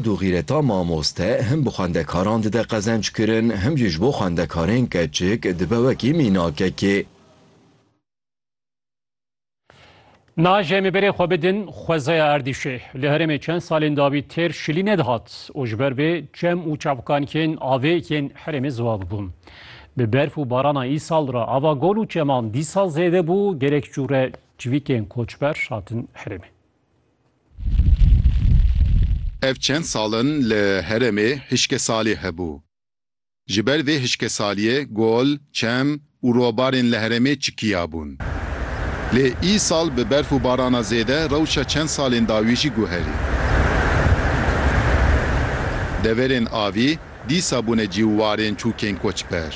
Du xîreta mamoste him bi xwendekaran dide qezenc kirin, him jî ji bo xwendekarên keçik dibe wekî mînakekê. Naj em ê berê xwe bidin xwezaya Erdîşê. Li herêmê çend salên dawî têr şilî nedihat û ji ber vê çem û çavkankên avê yên herêmê ziwav bûn. Bi berf û barana îsal re ava gol û çeman dîsa zêde bû, gelek cûre civîkên koçber hatin herêmê. Ev çend sal in li heremê hişkesalî hebû. Ji ber vê hişkesaliyê gol, çem û robarên li heremê çikiyabûn. Lê îsal bi berf û barana zêde rewşa çend salên dawî jî guherî. Deverên avî, Dîsa bûne cîw warên çûkên koçber.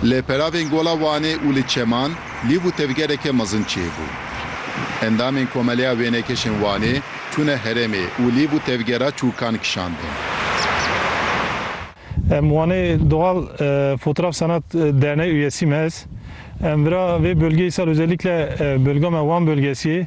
Li peravên Gola Wanê û li Çeman lîv û tevgereke mezin çêbû. Endamên Komeleya Wênekeşên Wanê çûne herêmê û lîv û tevgera çûkan kişandin. Em Wanê Doğal Fotraf Sanat Derneği üyesiyim ez. Em vira vê bölgeyê sal özellikle bölga me Wan bölgesiyê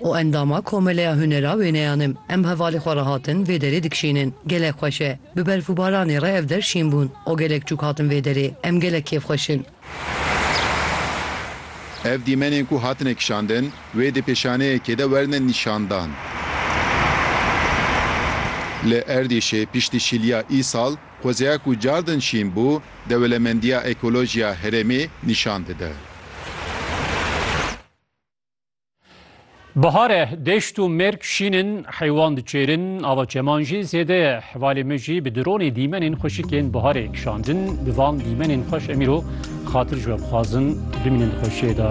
û endama Komeleya Hunera Wêneyan im. Em hevalê xwe re hatin vê derê dikişînin. Gelek xweş e. Bi berf û baranê re ev der şîn bûn û gelek çûk hatin vê derê. Em gelek kêfxweş in. Ev dîmenên ku hatine kişandin wê di pêşaneyekê de werine nîşandan. Li Erdîşê piştî şîliya îsal xwezeya ku car din şîn bû, Dewlemendiya Ekolojiya Herêmê nîşan dide. Bihare deşt û mêrg şîn in, heywan diçêrin, ava çeman jî zêde ye. Hevalê me jî bi dronê dîmenên xweşikên biharê kişandin. Bi van dîmenên xweş em îro xatir ji we bixwazin bimînin di xweşiyê de.